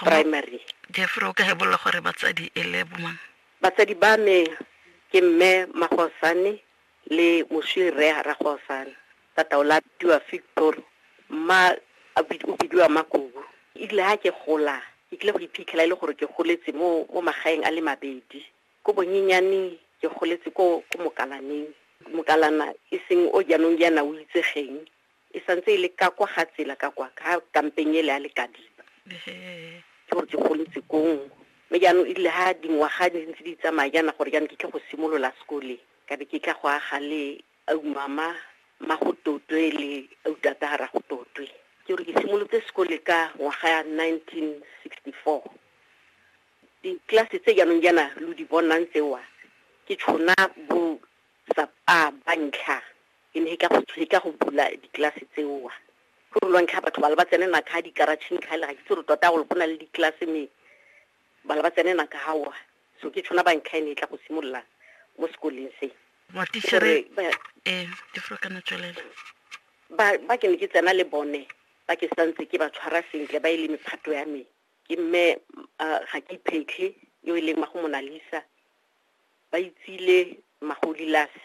primary. Jeffrey o ka hebolla gore batsadi e le bomang? Batsadi ba me ke mme Magosane le moswi rre Ragosane. Tata o latiwa Victor, mma o bidiwa Makubu. E rile ha ke gola ke kile go iphitlhela e le gore ke goletse mo mo magaeng a le mabedi. Ko bonyenyaneng ke goletse ko ko Mokalaneng. Mokalana e seng o jaanong jaana o itsegeng e santse e le ka kwa ga tsela ka kwa ka kampeng ele a le kadiba ke gore ke goletse kong mme jaanong e rile ga dingwaga di ntse di tsamaya jaana gore jaanong ke tle go simolola sekole ka be ke tla go aga le aumama ma go totwe le autata ga ra go totwe ke gore ke simolotse sekole ka ngwaga ya 1964 ditlelase tse jaanong jaana lo di bonang tsewa ke tshona bo sa a ba ntlha Ke ne ka go tshweka go bula diklase tseo. Go re lwantlha batho ba le ba tsene naka dikaratšheng ga le ga ke tse re tota gore go na le diklase me ba le ba tsene naka gawa so ke tshwana bantlha e ne e tla go simolola mo sekoleng se gore ba ke ne ke tsena le bone ba ke santse ke ba tshwara sentle ba e le mephato ya me ke mme ga ke iphetlhe yo e leng mago monalisa ba itsile magolilase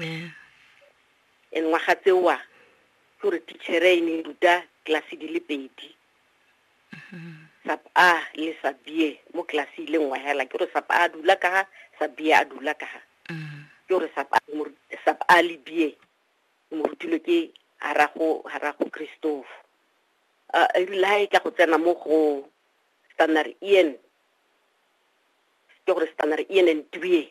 yeah. and ngwaga tseoa ke gore tichere e ne ruta tlelase di le pedi sap a le sabie mo tlelase ile nngwe hela ke gore sap a dula ka ga sabie a dula ka ga ke gore sap a le bie mo rutile ke harago harago christophe a e rile ha e tla go tsena mo go standard ian ke gore standard ian and tbie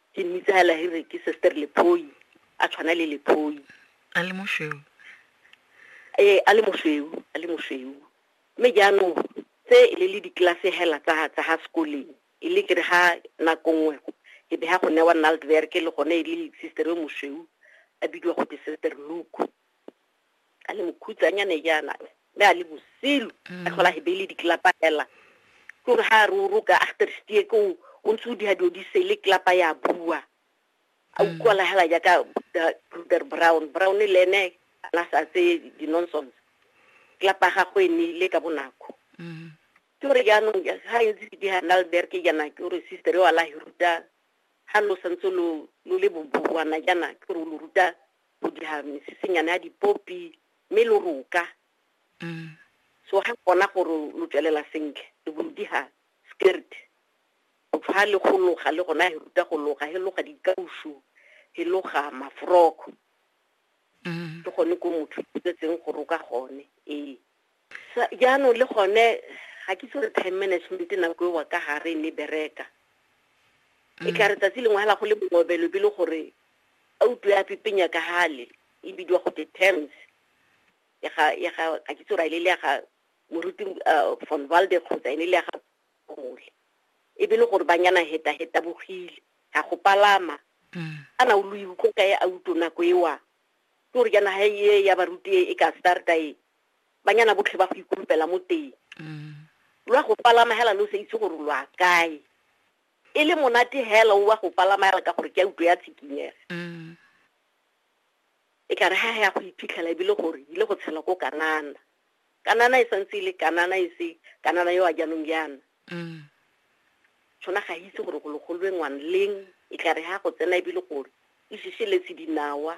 Ke mmitsa hela he re ke Sister Lephoi, a tshwana le Lephoi. A le mosweu. Ee, a le mosweu, a le mosweu. Mme jaanong tse e le le dikelase hela tsa tsa ha sekoleng, e le kere ha nako nngwe e be ha go newa Naltwerk le gone e le sister yo mosweu a bidiwa go te Sister Luke. a le mokhutsanyane jaana mme a le bosilu a tlhola he beile ditlelapa fela ke gore ga a re o roka agterstie ko o ntse o diga dilo di sele tlelapa ya bua a utlwala hela jaaka bruder brown brown le ene a na sa tseye di-nonsons tlelapa ga go e neile ka bonako ke gore jaanong ga e ntse ke diga nalberg jaana ke gore sister yo a la hiruta ga lo santse lo le boboana jaana ke gore o lo ruta o dira mesesenyana ya dipopi mme lo roka Mm. so ga bona gore lo tswelela sentle le bo lo diga skirt o tshwa le go loga le gona he ruta go loga he loga dikausu he loga mafroko Mm. ke gone ko motho o tsetseng go roka gone ee Sa, jaanong le gone ga ke itse gore time management nako ewa ka gare ne bereka e mm. kare tsatsi lengwe hela go le mongobelo be le gore a utlwe a pipenya ka hale e bidiwa go te terms ya ga ya ga ka ke tsora ile le ya ga moruti uh, von walde kgotsa ene le ya ga gole e be le gore ba nyana heta heta bogile ga go palama mm. a na o lo iutlwa ka e a utlo nako ewa ke gore jaana ha e ya baruti e ka starta e banyana botlhe ba go ikulupela mo teng mm. lwa go palama hela lo sa itse gore lwa kae e le monate hela o wa go palama hela ka gore ke a utlwe ya tshikinyega mm. e ka re ha ya go iphitlhela ebile gore ile go tshela ko kanana kanana e santse e le kanana e se kanana yo a jaanong yana mm. tshwana ga itse gore go legolwe ngwanleng e tla re ha go tsena ebile gore e šišeletse dinawa